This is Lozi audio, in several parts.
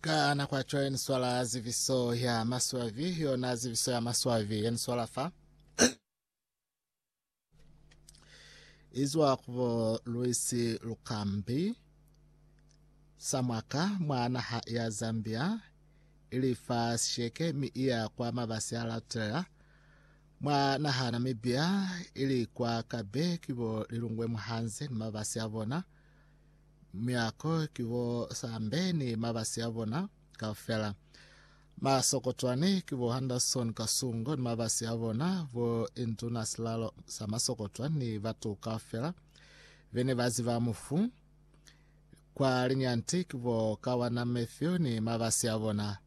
ka nako yaco yaniswala ziviso ya maswavi yona ziviso ya maswavi yaniswala fa izwa kubo luisi lukambi samwaka mwa naha ya zambia ili fa sisheke mi iya kwa mabasi a lautela mwa naha namibia ili kwa kabe kibo lilungwe muhanze ni mabasi a bona Muyako ki bo Sambe ni mabasi a bona kaufela. Masokotwane ki bo Henderson Kasungo ni mabasi a bona, bo Induna Silalo sa Masokotwa ni batu kaufela bene ba ziba mufu. Kwa Linyanti ki bo Kawana Matthew ni mabasi a bona.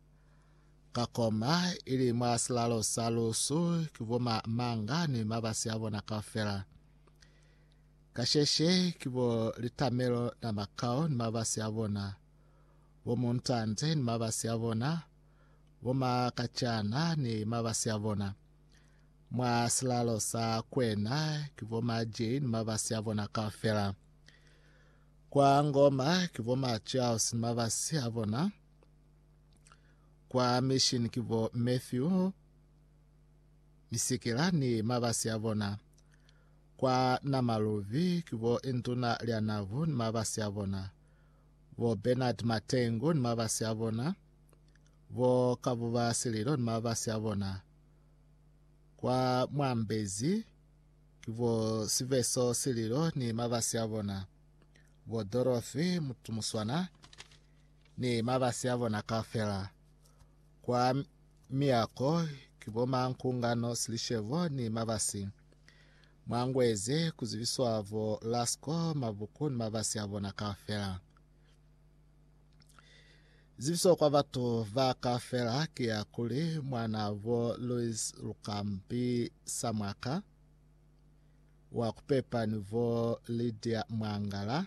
Ka Koma, ili mwa silalo sa Lusu, ki bo Ma Manga ni mabasi a bona kaufela. Kasheshe ki bo litamelo na makao ni mabasi a bona, bo muntante ni mabasi a bona, bo makacana ni mabasi a bona. Mwa silalo sa kwena ki bo maji ni mabasi a bona kaufela. Kwa ngoma ki bo Machaos ni mabasi a bona. Kwa mission ki bo Matthew Misikila ni mabasi a bona. Kwa Namaluvi ki bo Intuna Lya Navu ni mabasi a bona, bo Bernard Matengu ni mabasi a bona, bo Kabuba Sililo ni mabasi a bona. Kwa Mwambezi ki bo Siveso Sililo ni mabasi a bona, bo Dorothy Mutumuswana ni mabasi a bona kaufela. Kwa Miyako ki bo Mankungano, Silishebo ni Mabasi. Mwa ngwezi ku zibiswa bo Lasko, Mabuku ni Mabasi a bona kaufela. Zibiso kwa batu ba kaufela ki ya kuli mwana bo Louis Lukambi Samwaka wa kupepa ni bo Lydia Mwangala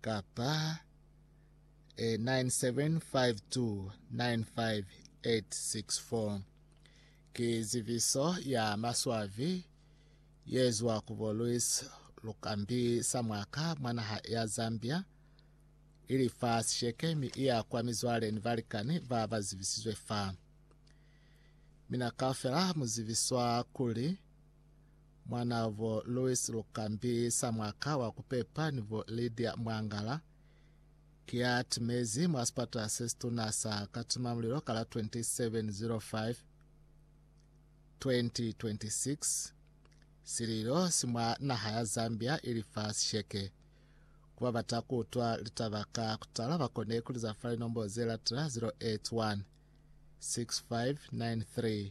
kapa 975295864. Ki zibiso ya maswabi yezwa ku bo Luis Lukambi Samwaka mwa naha ya Zambia, ili fa sisheke mi iya kwa mizwale ni balikani ba ba zibisizwe fa. Mina kaufela mu zibiswa kuli, Mwanavo Louis Lukambi sa mwaka wa kupepa ni bo Lydia Mwangala ki ya timezi mwa sipata se situna sa Katimamulilo ka la 2705 2026. Sililo si mwa naha ya Zambia ili fa sisheke. Ku ba bata ku utwa litaba ka kutala ba kone ku liza fa linombo ze latela 081 6593